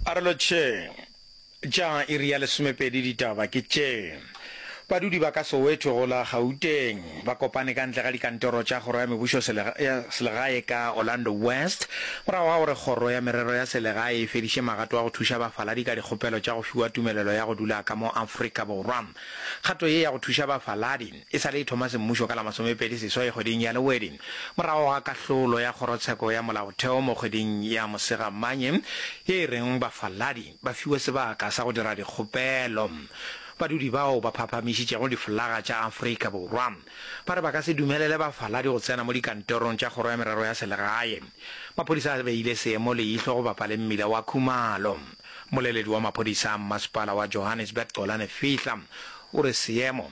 A re lo tše tša iri ya lesomepedi ditaba ke tše. Badudi ba ka Soweto go la Gauteng ba kopane ka ntle ga dikantoro tša kgoro ya mebušo ya selegae ka Orlando West morago ga gore kgoro ya merero ya selegae e fediše magato a go thuša bafaladi ka dikgopelo tša go fiwa tumelelo ya go dula ka mo Afrika Borwa. Kgato ye ya go thuša bafaladi E sa le e thoma semmušo ka la masomepedi seswai kgweding ya Lewedi, morago ga kahlolo ya Kgorotsheko ya Molaotheo mo kgweding ya Mosegamanye ye e reng bafaladi ba fiwe sebaka sa go dira dikgopelo, badudi bao ba phaphamišitšego diflaga tša Afrika Borwa ba re ba ka se dumelele bafaladi go tsena mo dikantorong tša Kgoro ya Merero ya Selegae. Maphodisa a beile seemo leihlo go bapa le mmila wa Khumalo. Mmoleledi wa maphodisa a mmasepala wa Johannesburg Xolani Fihla o re seemo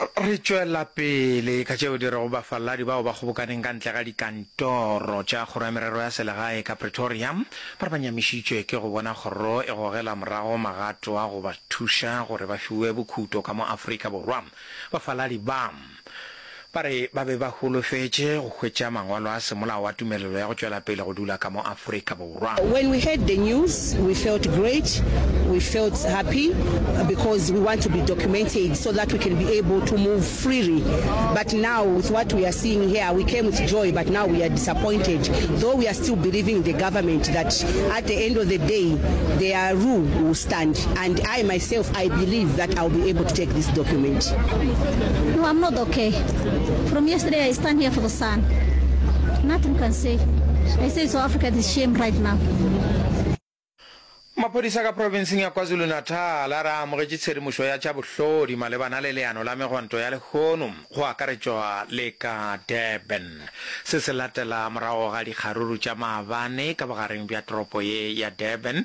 re tšwela pele ka tšeo di rego bafaladi bao ba kgobokaneng ka ntle ga dikantoro tša kgoro ya merero ya selegae ka pretoria ba re ba nyamišitšwe ke go bona kgoro e gogela morago magato a go ba thuša gore ba fiwe bokhuto ka mo afrika borwa bafaladi ba Ba re ba be ba holofetše go hwetša mangwalo a semolao a tumelelo ya go tšwela pele go dula ka mo Afrika Borwa. When we heard the news, we felt great, we felt happy because we want to be documented so that we can be able to move freely but now with what we are seeing here, we came with joy but now we are disappointed though we are still believing in the government that at the end of the day their rule will stand and I myself I believe that I will be able to Take this document. No, I'm not okay. From yesterday, I stand here for the sun. Nothing can say. I say South Africa is shame right now. Maphodisa ka provinseng ya KwaZulu-Natal a re a amogetše tshedimošo ya tša bohlodi malebana le leano la megwanto ya lehono go akaretšwa le ka Durban. Se se latela morago ga dikgaruru tša maabane ka bogareng bja toropo ye ya Durban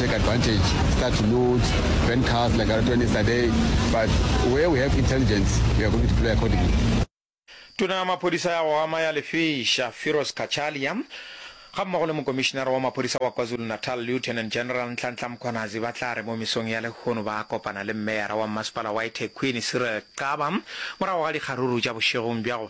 take advantage, start to loot, burn cars like I was doing yesterday, but where we have intelligence, we are going to deploy accordingly. Tona ya Maphodisa ya go Ama ya Lefeša, Firoz Cachalia, gammogo le Mokomišinara wa Maphodisa wa KwaZulu-Natal, Lieutenant General Nhlanhla Mkhwanazi ba tla re mo mesong ya lehono ba kopana le Meyara wa Mmasepala wa eThekwini, Cyril Xaba, morago ga dikgaruru tša bošegong bja go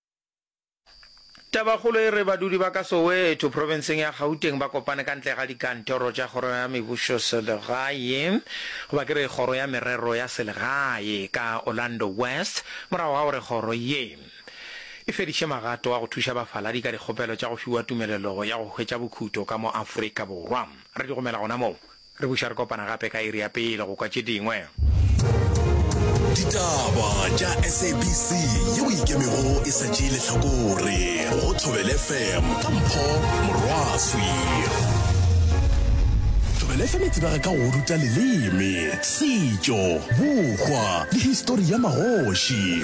Tabakgolo e re badudi ba ka Soweto, profenseng ya Gauteng ba kopane ka ntle ga dikantoro tša Kgoro ya Mebusoselegae, goba ke re Kgoro ya Merero ya Selegae, ka Orlando West morago ga gore kgoro ye e fediše magato a go thuša bafaladi ka dikgopelo tša go fiwa tumelelo ya go hwetša bokhuto ka mo Afrika Borwa. Re di romela gona moo. Re buša re kopana gape ka iri ya pele go kwa tše dingwe. Ditaba tša SABC yeo e ikemego e sa tšee lehlakore go Thobel FM ka Mpho Morwaswi. Thobel FM e tsebega ka go ruta leleme, setšo, bokgwa le histori ya magoši.